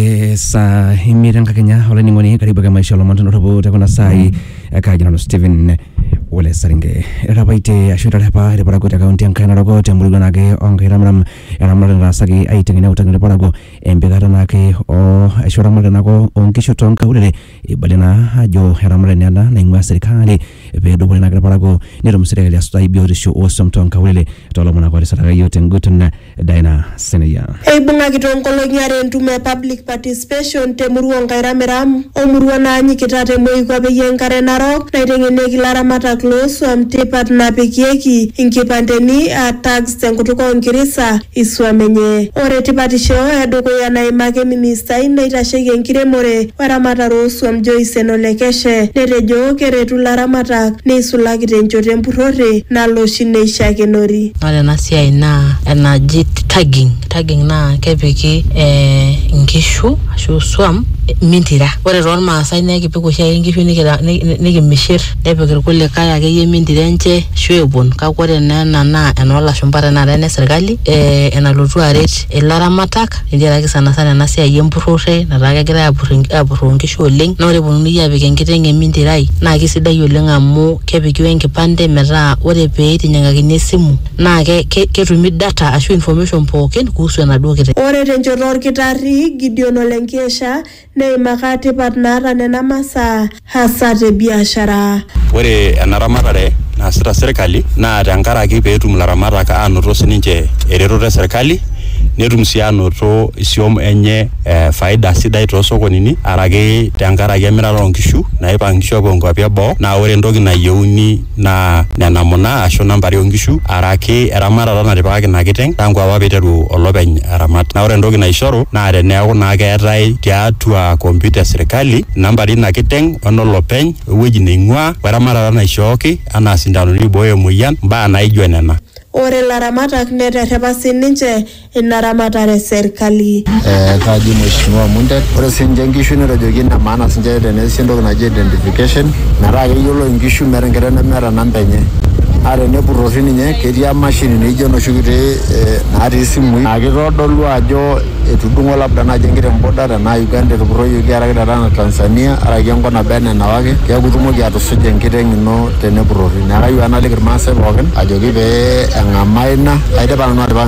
Eh, saa imiet enkakenya olainining'oni karibu ake maisha olomon tenotopo tekuna saai ekaaji nanu Stephen Ole Saringe etapaitie ashu etarepa irparakuo te kaunti enkai naroko temurua naake onkai ramiram eramatare nataasaki aiteng'en neutaki irparakuo empikata naake o ashu eramatare naake onkishu tonkaulele Eibalie naa ajo eramatare naa ena naing'ua serikali pee edupore naake irparakuo netum serikali asutai biotisho oo swam too nkaulele too lomon ake otisiraka iyiok te nguton. Dina Senior. Eibung'aki too nkolong'i are entumo e public participation te murua oo Nkairamiram o murua naanyikita te moikuape e Enkare Narok naiteng'enieki ilaramatak loo swam tipat napikieki inkipandeni aa tags. tenkutuk oo Nkirisa isuam enye. Ore tipatisho e dukuya naimaki ministai naitasheiki enkiremore o eramatare oo suam Joyce Enolekeshe netejo keretu laramatak neisulaki te nchoto e mpurrore nalo oshi neishakenori. Ore ena siai naa enaji tagging, tagging naa kepiki inkishu ashu isuam mintira. Ore too Lmaasai naa ekipik oshiake inkishu nikimishirr. nepik irkulikae akeyie mintire enche ashu epon kake ore naa ena naa enoolashumpa tenakata ene sirkali eh, enalotu aret ilaramatak tenkaraki sanasana ena siai empurrore netaa kegirae apurr enk- apurroo inkishu oleng naa ore eponunui apik enkiteng emintirai naa kisidai oleng amu kepiki wenkipande metaa ore peitinyiang'akini esimu naa ke, ke, ketumi data ashu information pookin kuhusu enaduo kiteng. Ore tenchoto olkitarri Gideon Ole Nkiesha Neimaka tipat naata nena masaa hasa te biashara. Ore ena ramatare naasita serkali naa tenkaraki pee etum ilaramatak aanoto sininche eretoto e serkali netum sii aanoto isiom enye faida sidai too sokonini araki tenkaraki emirata oo nkishu naipang inkishu aapuo nkuapi e boo naa ore entoki nayieuni naa nena muna ashu nena ntare oonkishu araki eramatata natipikaka ina kiteng tangu apa peiteru olopeny aramat. Naa ore entoki naishoru naa teneeku naa keetae tiatua kompyuta e sirkali inambari eina kiteng, enolopeny, o ewueji neing'uaa, o eramatata naishooki anaa isindanoni oibooyo emoyian, imbaa naaijo nena. Ore ilaramatak neterrepa sii ninche. ina ramatare e serkali. Eh, kaji mheshimiwa Mundet, ore sinche inkishu netejoki ine maana sinche teneesi entoki naji identification metaa keyiolo inkishu meeta enkiteng nemeeta namba enye naa tenepurrori ninye ketii emashini naijo enoshi kiti eh, natii isimui naa kitodolu ajo etudung'o labda naaji enkiteng boda tenaa Uganda etupurroyioki araki tenaa Tanzania araki enkop naba enaa enawaki keeku itumoki atusuja enkiteng ino tenepurrori neeku kayieu ake naliki irmaasai pookin ajoki pee eng'amaa ina aidipa nanu atipika.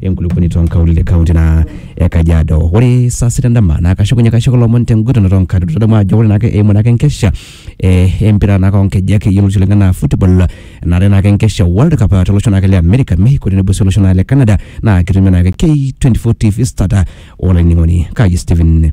enkulupuoni too nkaulele kaunti naa e Kajiado. Ore saa sita endama naa kashukunye kaishoko lomon tenguton too nkador. Tadamu ajo ore naake eimu naake enkesha eh, empira naake onkejek yioloti oleng enaa football enare naake enkesha World Cup ah, tolosho naake le America, Mexico tenebo sii olosho naake le Canada naa kitumia naake K24 TV starter olainining'oni Kaji Stephen.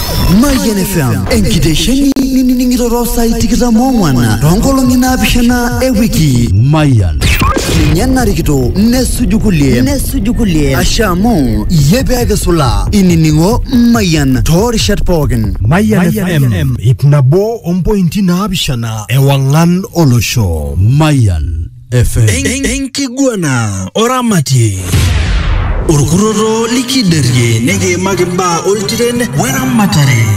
Mayian FM enkitesheni nining'iroro saai tikitam oong'wan toonkolong'i naapishana e wiki. Mayian. Ninye narikito nesuju kulie nesuju kulie asha amu iyie pee kisula inining'o Mayian toorishat pookin. Mayian FM ip nabo ompointi naapishana ewang'an olosho. Mayian. FM. En- enkiguana oramatie orkuroro likiderie nikiimaki mbaa oltiren weramatare